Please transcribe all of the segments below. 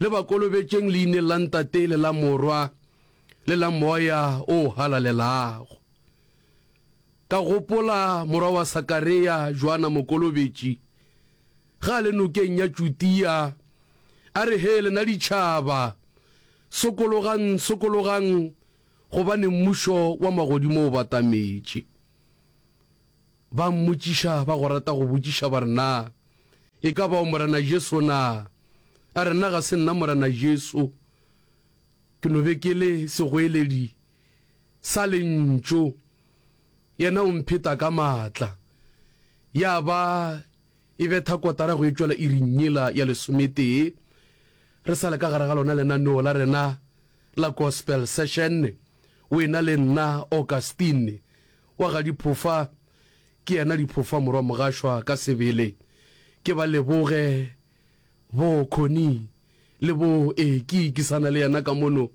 Le ba kolobetšeng leineng la Ntate le la Morwa le la Moya o Halalelago. Ka gopola morwa wa Sakarea, Joana Mokolobetši, ge a le nokeng ya Judia, a re, Hee lena ditšhaba, sokologang, sokologang, gobane Mmušo wa magodimo o batametše. Ba mmotšiša ba go rata go botšiša ba re, Na e ka ba o Morena Jesu na? A re, Nna ga se nna Morena Jesu. Ke no be ke le segoeledi sa Lentšu, yena o mpheta ka matla. Ya ba e betha kotara go e tšwela iring yela ya lesometee, re sa le ka gare ga lona lenaneo la rena la Gospel Session, wena le nna, Augustine. Wa ga Diphofa ke yena Diphofa morwa Mogashwa ka sebele. Ke ba leboge bo Connie le bo ee ke ikisana le yena ka mono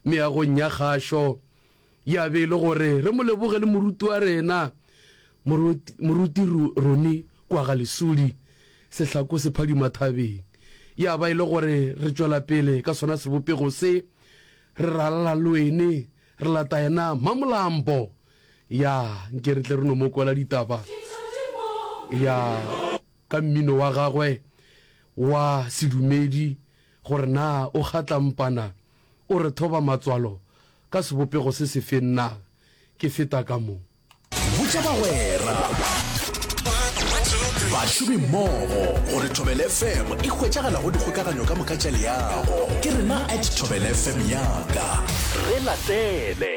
meagong ya kgašo. Ya be e le gore re mo leboge le moruti wa rena moruti Roni kwa ga Lesudi sehlako se phadima thabeng. Ya ba e le gore re tšwela pele ka sona sebopego se re ralala le wene. Re lata yena Mamolambo. Ya, nke re tle re no mo kwela ditaba. Ya, ka mmino wa gagwe wa sedumedi, gore na o kgatlampana, o re thoba matswalo ka sebopego se sefeng na? Ke feta ka mo. botša bagwera bašomi mmogo gore thobel fm e hwetšagala go dikgokaganyo ka moka tša leago ke rena at thobel fm yaka re latele